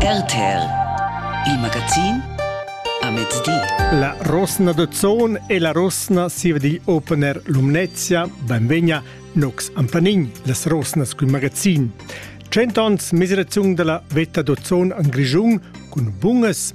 RTL Il magazin a mezdi. La Rosna de Zon e la Rosna siva digl opener Lumnezia, benvegna Nox Ampanin, las Rosnas cun magazin. Cent ons miseraziun dalla veta d'Ozon an Grischun cun bungas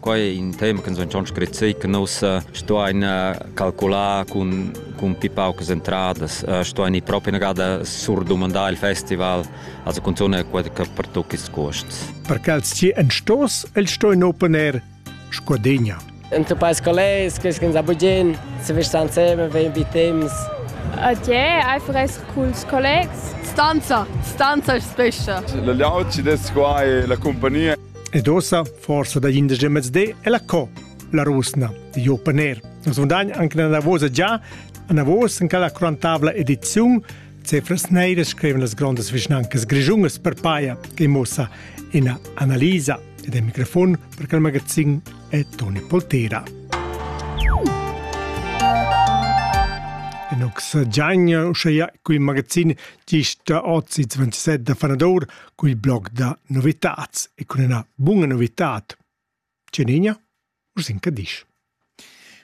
Quai è in tema che noi schon scrit che noi stuain calcular cun, cun pi paucas entradas, stuain proprio una gada surdumandar il festival, also cun zone che per tutti i costs. Per quels ci en stos, el stoin opener Scodegna. Într-un país qual è, scrivem a Bugin, se vi stan insieme, vegn vi temps. Adieu, einfach essere con i colleghi. Stanza, stanza è spesso. La layout ci des qua è la compagnia. Ed ossa, forsa dagl indesch mezdi, è la co, la rusna, di Jo Paner. Nus vundagn anche nella vosa già, anavos in quella quarantavla ediziun, Cefras Neire scriven las grondas vischnancas grischungas per paia, che mossa ina analisa ed è microfon per quel magazin è Toni Poltera. Enox Giagna, uscheia qui magazin gist ozi 27 da Fanador, cul blog da novitats e cun üna buna novitad. Tgenigna? Urs in Cadisch.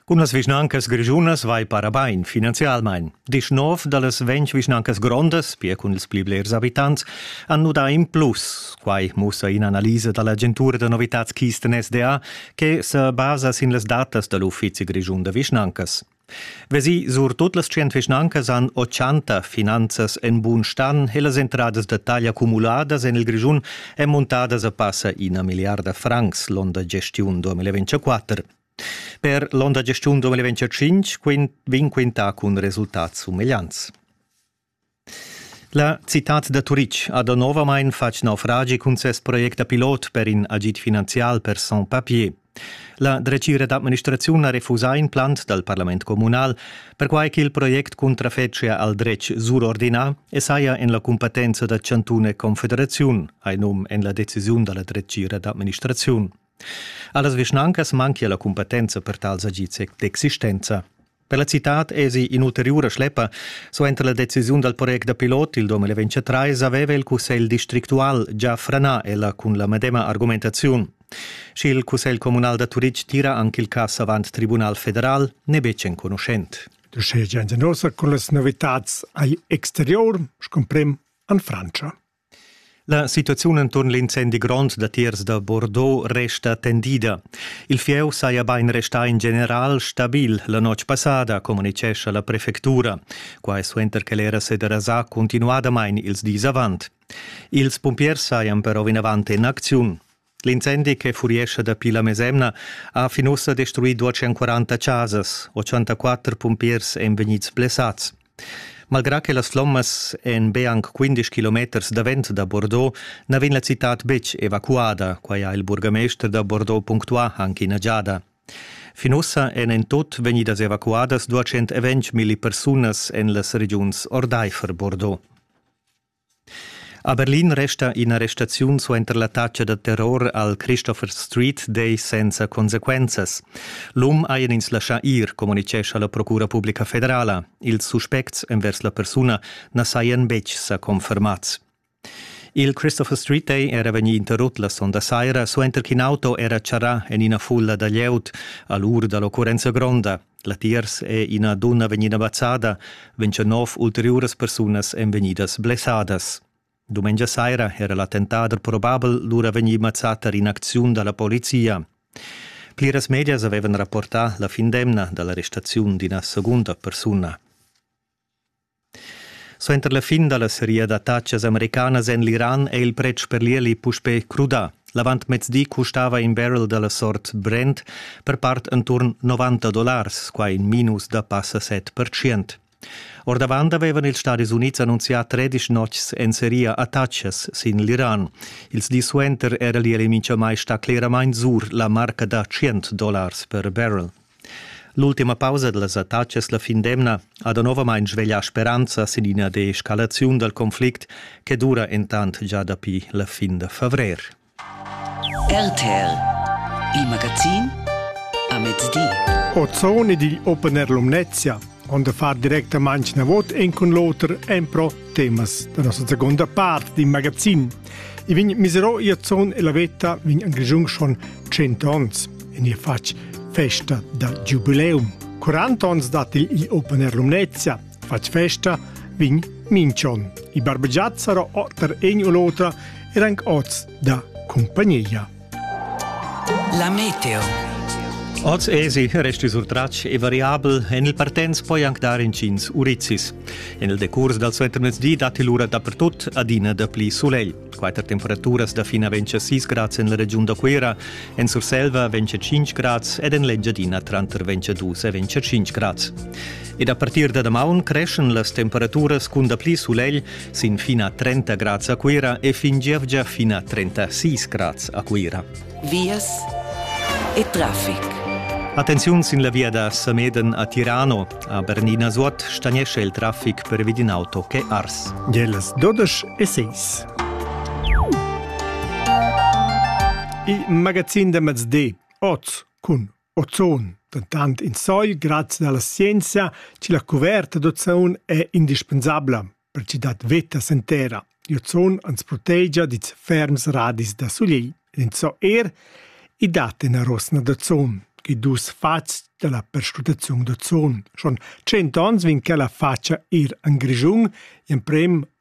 Cun las vischnancas grischunas vai para bain finanzialmain. Disch nov da las ventg vischnancas grondas, pia cun ils pli blers abitants, han nudà in plus. Quai mussa in'analisa da l'agentura da novitats Kisten SDA che se basa sin las datas da l'Uffizi grischun da vischnancas. Vesi surtut las tschient vischnancas han ochanta finanzas en bun stan e las entradas da taglia cumuladas en il Grischun èn montadas a passa ina milliarda francs l'onn da gestiun 2024. Per l'onn da gestiun 2025 vegn quintà cun resultats sumegliants. La citad da Turitg ha danovamain fatg naufragi cun ses project da pilot per in agid finanzial per sans papiers. La dretgira d'administraziun ha refusà in plant dal parlament communal, perquai ch'il project cuntrafetschia al dretg surordinà e saja en la cumpetenza da chantun e confederaziun, hai num en la decisiun da la dretgira d'administraziun. A las vischnancas manchia la cumpetenza per tals agids d'existenza. Per la citad èsi in'ulteriura schleppa. Suenter la decisiun dal project da pilot il 2023 aveva il cussegl districtual già franà ella cun la medema argumentaziun. Sch'il cussegl communal da Turitg tira anche il cass avant tribunal federal, n'è betg enconuschent. Der Schädchen sind also con las novitats ai exterior, scomprem an Francia. La situaziun enturn l'incendi grond datiers da Bordeaux resta tendida. Il fieu saja bain restà in general stabil la notg passada, communitgescha la prefectura. Quai suenter che l'era se derasà cuntinuadamain ils dis avant. Ils pumpiers sajan però vinavant en acziun. L'incendi che furiescha dapi la mesemna ha fin ussa destruì 240 chasas, 84 pumpiers èn vegnids blessads. Malgrà che las flommas èn be anc 15 kilometers davent da Bordeaux, na vegn la citad betg evacuada, quai ha il burgamester da Bordeaux punctuà anche ina giada. Fin ussa èn en tut vegnidas evacuadas 220 milli persunas en las regiuns ordaifer Bordeaux. A Berlin resta ina restaziun suenter l'attacca da terror al Christopher Street Day senza consequenzas. L'um hajan ins laschà ir, communitgescha la Procura publica federala. Ils suspects envers la persuna na sajan betg sa confermads. Il Christopher Street Day era vegnì interrut la sonda saira suenter ch'in auto era charrà en ina fulla da glieud a l'ur da l'occurrenza gronda. Latiers è ina dunna vegnida mazzada, ventscha nov ulteriuras persunas èn vegnidas blessadas. Dumengia saira era l'attentader probabel lura vegnì mazzà tar in'acziun da la polizia. Pliras medias avevan rapportà la fin d'emna da l'arrestaziun d'ina segunda persuna. Suenter la fin dalla seria d'attatgas americanas en l'Iran è il pretsch per l'ieli puspè crudà. L'avantmezdi custava in barrel dalla sort Brent per part enturn 90 dollars, quai in minus da passa 7%. Ordavant avevan ils Stadis Unids annunzià tredisch notgs en seria attatgas sin l'Iran. Ils dis suenter era l'ieli mintgamai stà cleramain sur la marca da 100 dollars per barrel. L'ultima pausa dals attacks es la fin d'emna ha danovamaing sveglià speranza sin ina deescalaziun dal conflict che dura intant già dapi la fin da favrer. RTL Il magazin a mezdi. Ozone ed il Open Air Lumnezia on da far directamaing na vot en cun l'oter en pro temas da nossa seconda part d'in magazin. I vegn miserò ir zon e la veta vegn en Grischun schon 100 ons. In je fatg festa da giubileum. 40 ons dat il Open Air Lumnezia, fatg festa vegn Minchon. I barbegiazzaro otter egn u l'otra er anc oz da compagnia. La meteo. Oz esi resti sur tratg e variabel en il partenz poi anc dar intgins urizis. En il decurs dal suentermezdi datti lura dapertut adina dapli sulegl. Quatter temperaturas da fina ventg a 6 grads en la regiun da Cuira, en Surselva ventg a 5 grads ed en l'Engiadina tranter ventg a 2 e ventg a 5 grads. Ed a partir da damaun creschen las temperaturas cun dapli sulegl sin fin a 30 grads a Cuira e fin gievgia fin a 36 grads a Cuira. Vias e traffic. Attenziun sin la via da Sameden a Tirano. A Bernina Suot stagnesce il traffic per vid in auto che Ars. Geles 12 e 6. Il magazin de mezdi, oz cun Ozon, dentant insai grazia alla scienza che la cuverta d'ozon è indispensabla per ch'i dat veta sen terra. L'ozon ans protegia dils ferms radis da solegl. Enzò er i dat ina rosna d'ozon, che dus fatgs della perscrutazione d'ozon. Schon 100 ans vegn quella facia ir en Grischun, in prem